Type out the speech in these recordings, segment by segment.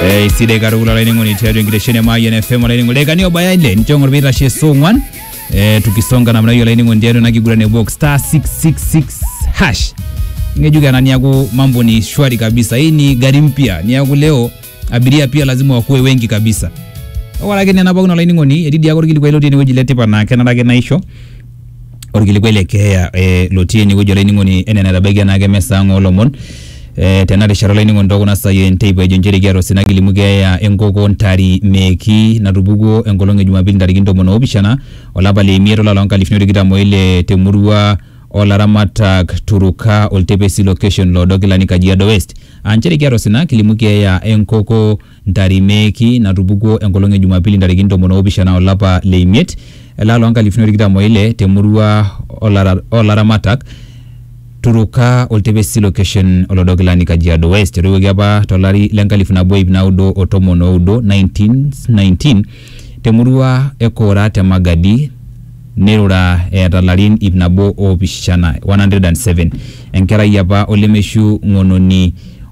Eh, isidai katukul olainining'oni tiatua enkitesheni e Mayian FM olainining'oni lekani obaya ile nicho ng'or piitashe saa ong'wan eh, tukisonga namna hiyo olainining'oni tiatua ena kiguran e box star 666 hash ng'ejuk ena niaku mambo ni shwari kabisa hii ni gari mpya niaku leo abiria pia lazima wakuwe wengi kabisa ore ake nena pookin olainining'oni etii diake orkilikuai lotii enewueji letipat naa kenare ake naisho orkilikuai le keeya eh, lotii enewueji olainining'oni enaa enatabaikia enaake mesa ang olomon eh, tena rishata olainining'oni tookuna saai enteipa ejo nchere kiata osina kilimu keeya enkoko ntari meeki natupukuo enkolong e jumapili ntarikini tomon oopishana olapa le imiet olapa loonkalifuni otikitam oile temurua olaramatak Turuka Oltepesi location loodo kilani Kajiado West aa nchere kiata osina kilimu keeya enkoko Ntarimeeki natupukuo enkolong e Jumapili ntarikini tomon oopishana o lapa le imiet elaa loo nkalifuni o tikitam o ile te murua oo laramatak Turuka Oltepesi Location Olodokilani Kajiado West. Etoiwuoki apa to lari le nkalifu nabo iip naudo o tomon o udo, 1919, te murua e Koora te Magadi neirura eeta larin iip nabo oopishana, 107. Enkerai apa o lemeishu ng'ononi.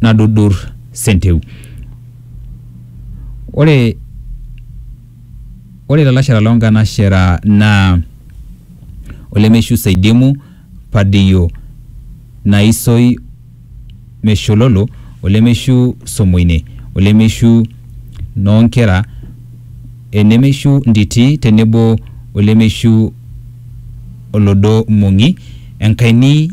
nadudur senteu. Ore ore lalashera loo nkanashera naa olemeishu seidimu padiyo naisoi meshololo olemeishu somoine olemeishu noo nkera enemeishu nditi tenebo olemeishu olodo mong'i enkaini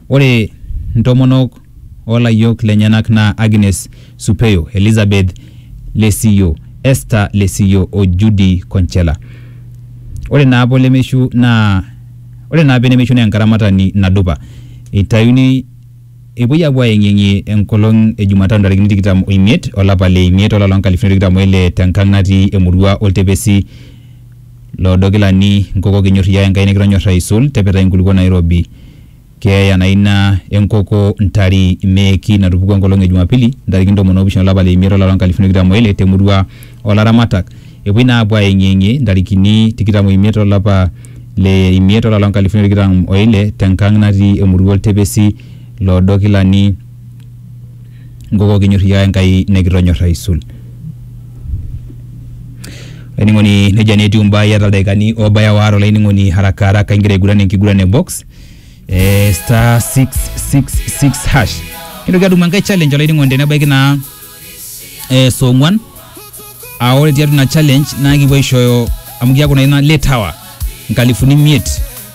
Ore ntomonok oo layiok lenyenak naa Agnes Supeyo, Elizabeth Lesiyo, Esther Lesiyo o Judy Konchela. Ore naa apa olemeishu naa Ore naa apa enemeishu naa enkaramatani nadupa. Eitayuni Epuoi aapuo aayeng'iyeng'ie enkolong e Jumatano ntarikini tikitam o imiet olapa le imiet olapa loo nkalifuni are o tikitam o ile te nkang natii emurua Oltepesi, Loodo kilani nkoko kinyor iyie ake Enkai nikitonyorra aisul tepetai nkulukuok nairobi. Keeya naa ina e nkoko ntari meeki natupukua enkolong e Jumapili ntarikini ntomoni oopishana o lapa le imiet o lari loo nkalifuni o tikitam o ile te murua o laramatak epuoi naa apuo aayeng'iyeng'ie ntarikini tikitam o imiet o lapa le imiet o lari loo nkalifuni o tikitam o ile te nkang natii emurua Oltepesi loodo kilani nkoko kinyorriaa Enkai nikitonyorr aisul. Olainining'oni nejia naa etiu imbaa iyata ildaikani oobaya waare olainining'oni haraka haraka igira aiguran enkiguran e box eh, star 666 hash. Nintoki atum enkae challenge olainining'oni tenebaiki naa eh, saa ong'wan aa ore tiatua ina challenge naa kipuo aishooyo amu keeku naa ina late hour nkalifuni imiet